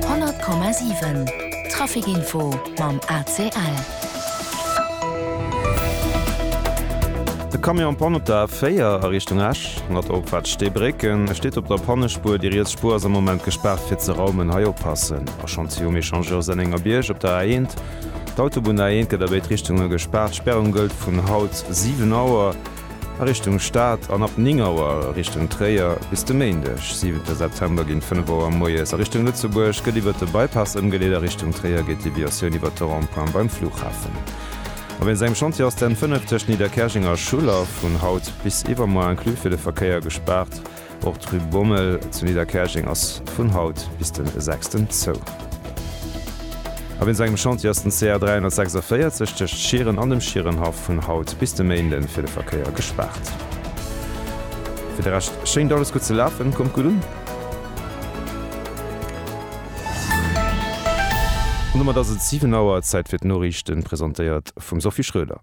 100,7 Traficinfo mam ACL. De Camion pannt op der A4 a Richtung Esch, mat opwäerts Steebrécken. E steet op der Pannespuer, déi riets Spuer ass am Moment gespaart fir ze raumen. Hei oppassen, a Chantier um Echangeur Sennengerbierg op der A1. D'Autobunn A1 gëtt a béid Richtunge gespaart. D'Sperrung gëllt vun haut 7 Auer. A Richtung Stad an ab 9 Auer a Richtung Tréier. Bis de Méindeg, 7 September ginn 5 Auer moies a Richtung Lëtzebuerg gëtt iwwert de Bypass ëmgeleet a Richtung Tréier geet d'Deviatioun iwwert de Rond-point beim Flughafen. A wéinst engem Chantier ass d'N 5 tëschent Nidderkäerjeng a Schuller vun haut bis iwwermoie inclus fir de Verkéier gespaart. Och d'Rue Bommel zu Nidderkäerjeng ass vun haut bis de sechsten zou. A wéinst engem Chantier ass den CR 346 tëscht Schieren an dem Schierenhaff vun haut bis de Méinde fir de Verkéier gespaart. Fir de Rescht schéngt alles gutt ze lafen, kommt gutt un! An domat ass et 7 Auer, Zäit fir d'Noriichten, presentéiert vum Sophie Schroeder.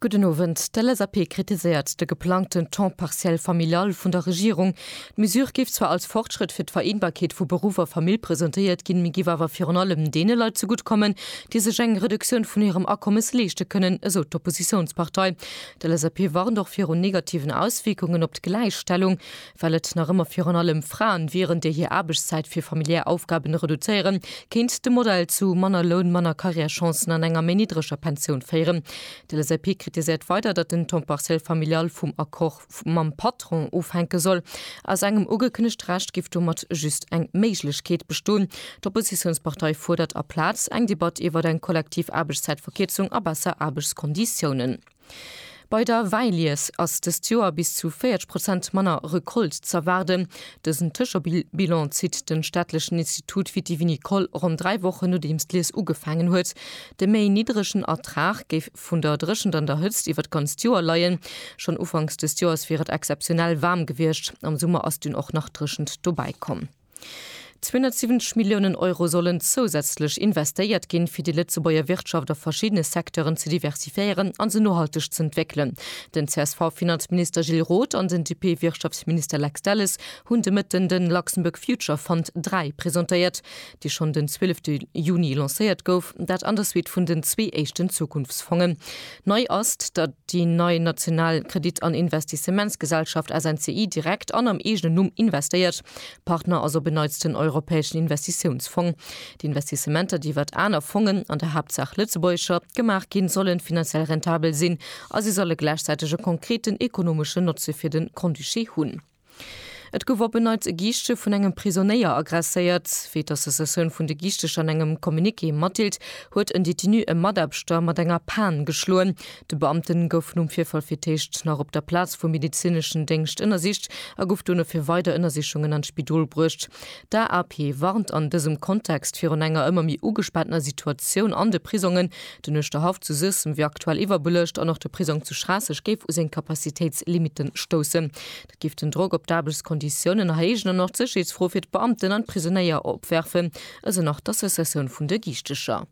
Gudden Owend. D'LSAP kritiséiert de geplangten Temps partiel familial vun der Regierung. D'Mesure géif zwar als Fortschrëtt fir d'Vereenbarkeet vu Beruff a Famill presentéiert ginn, mee géif awer virun allem deene Leit zegutt kommen, déi sech eng Reduktioun vun hirem Akommes leeschte kënnen, esou d'Oppositiounspartei. D'LSAP warnt och virun negativen Auswierkungen op d'Gläichstellung. Well et nach ëmmer virun allem Fraen wieren, déi hir Aarbechtszäit fir familiär Aufgaben reduzéieren, kéint de Modell zu manner Loun, manner Carrièrechancen an enger méi niddreger Pensioun féieren. D'LSAP kritiséiert weider, datt den Temps partiel familial vum Accord mam Patron ofhänke soll. Aus engem ugekënnegte Recht géif domat just eng Méiglechkeet bestoen. D'Oppositiounspartei fuerdert aplaz eng Debatt iwwert eng kollektiv Aarbechtszäitverkierzung a besser Aarbechtskonditiounen. Bei der Wäilies ass dëst Joer bis zu 40 Prozent manner Recolte z'erwaarden. Dësen Tëschebilan zitt de staatlechen Institut Vitivinicole ronn dräi Wochen nodeems d'Lies ugefaangen huet. De méi niddregen Ertrag géif vun der Dréchent an der Hëtzt iwwer d'ganzt Joer leien. Schonn ufanks dëst Joers wier et exzeptionell waarm gewiescht, am Summer ass dunn och nach Dréchent dobäi komm. 270 Milliounen Euro sollen zousätzlech investéiert ginn, fir déi Lëtzebuerger Wirtschaft a verschiddene Secteuren ze diversifiéieren a se nohalteg ze entwéckelen. Den CSV-Finanzminister Gilles Roth an den DP-Wirtschaftsminister Lex Delles hunn de Mëtten de Luxembourg Future Fund 3 presentéiert, dee schonn den 12 Juni lancéiert gouf, dat an der Suite vun den zwee éischten Zukunftsfongen. Nei ass, datt déi nei national Kredit an Investissementsgesellschaft SNCI direkt an am eegenen Numm investéiert. Partner ass op en Neits den Europäeschen Investitiounsfong. D'Investissementer, déi iwwert aner Fongen, an der Haaptsaach lëtzebuergescher, gemaach ginn, sollen finanziell rentabel sinn a si solle gläichzäiteg e konkreten ekonomeschen Notze fir de Grand-Duché hunn. Et gouf op en Neits e Giischtje vun engem Prisonéier agresséiert. Wéi d'Associatioun vun de Giischteger an engem Communiqué matdeelt, huet en Detenu e Mataarbechter mat enger Pan geschloen. De Beamte gouf nom Virfall fir d'éischt nach op der Plaz vum medezineschen Déngscht ënnersicht a gouf dono fir weider Ënnersichungen an d'Spidol bruecht. D'AAP warnt an dësem Kontext virun enger ëmmer méi ugespaantener Situatioun an de Prisongen, Den Uerschterhaff zu Suessem wier aktuell iwwerbelëscht an och de Prisong zu Schraasseg géif u seng Capacitéitslimite stoussen. Dat géif den Drock op d'Aarbechtskonditiounen erhéijen an och d'Sécherheetsfro fir d'Beamten an d'Prisonéier opwerfen, esou nach d'Associatioun vun de Giichtecher.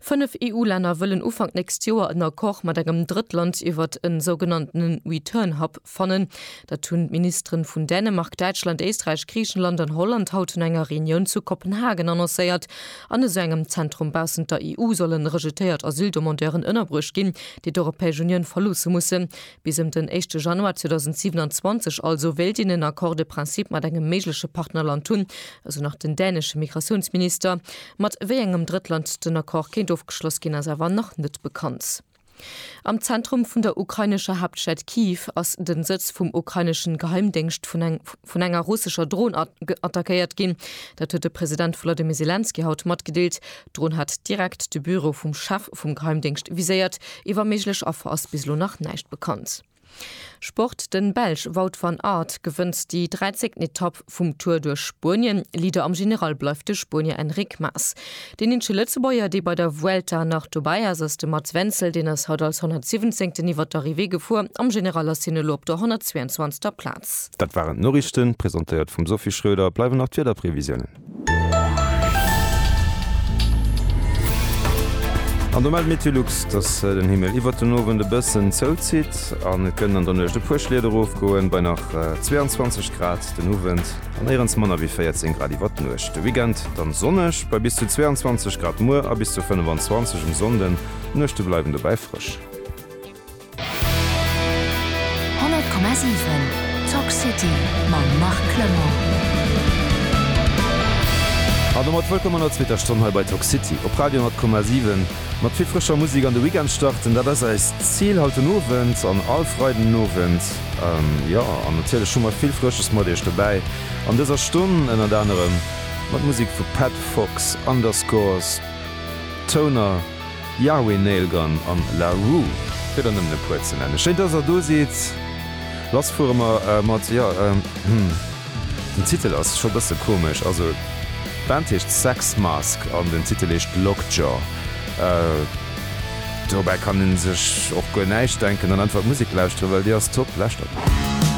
Fënnef EU-Länner wëllen Ufank d'nächst Joer en Accord mat engem Drëttland iwwert e sougenannten Return Hub Fannen. Dat hunn d'Ministeren vun Dänemark, Däitschland, Éisträich, Griichenland an Holland haut un enger Reunioun zu Kopenhagen annoncéiert. An esou engem Zentrum baussent der EU sollen rejetéiert Asyldemandeuren ënnerbruecht ginn, déi d'Europäesch Unioun verloosse mussen. Bis ëm den éischte Januar 2027 also wéilt een en Accord de principe mat engem méigleche Partnerland hunn, esou nach den dänesche Migratiounsminister. Mat wéi engem Drëttland den Accord kéint ofgeschloss ginn, ass awer nach net bekannt. Am Zentrum vun der ukrainescher Haaptstad Kyiv ass den Sëtz vum ukraineschen Geheimdéngscht vun enger russescher Dron attackéiert ginn. Dat huet de President Volodymyr Selenskyj haut matgedeelt. D'Dron hat direkt de Büro vum Chef vum Geheimdéngscht viséiert. Iwwer méiglech Affer ass bis elo nach näischt bekannt. Sport, De Belsch Wout van Aert gewënnt déi 13. Etapp vum Tour duerch Spuenien. Leader am General bleift de Spuenier Enric Mas. Deen eenzege Lëtzebuerger, dee bei der Vuelta nach dobäi ass, ass de Mats Wenzel. Deen ass haut als 117. iwwert d'Arrivée gefuer. Am General ass hien elo op der 122. Plaz. Dat waren d'Noriichten, presentéiert vum Sophie Schröder. Bleiwen nach d'Wiederprevisiounen. An do mellt Meteolux, dass den Himmel iwwert den Owend e bëssen zouzitt an et kënnen an der Nuecht e puer Schliet erofgoen, bei nach 22 Grad den Owend an néierens manner wéi 14 Grad iwwert d'Nuecht. De Weekend dann sonneg bei bis zu 22 Grad muer a bis zu 25 um Sonnden, d'Nuechte bleiwen dobäi frësch. 100,7 Talk City mam Marc Clement. An domat wëllkomm an der zweeter Stonn hei bei Talk City op Radio 100,7. Mat vill frëscher Musek an de Weekend starten, dat ass eist Zil haut den Owend an all Freiden Owend. Jo, an natierlech hu mer vill Frësches mat iech dobäi an dëser Stonn, ënnert anerem mat Musek vu Pat Fox, Underscores, Toner, Yahweh, Nail Gun an La Rue, fir der nëmmen e puer ze nennen. Schéin, dass er do sidd. Lass fuere mer mat. Jo, hm, den Titel ass scho bësse komesch. Also, d'Band heescht Sex Mask an den Titel heescht Lockjaw. Dobäi kann ee sech och guer näischt denken an einfach d'Musek lauschtere well déi ass top. Lauschtert!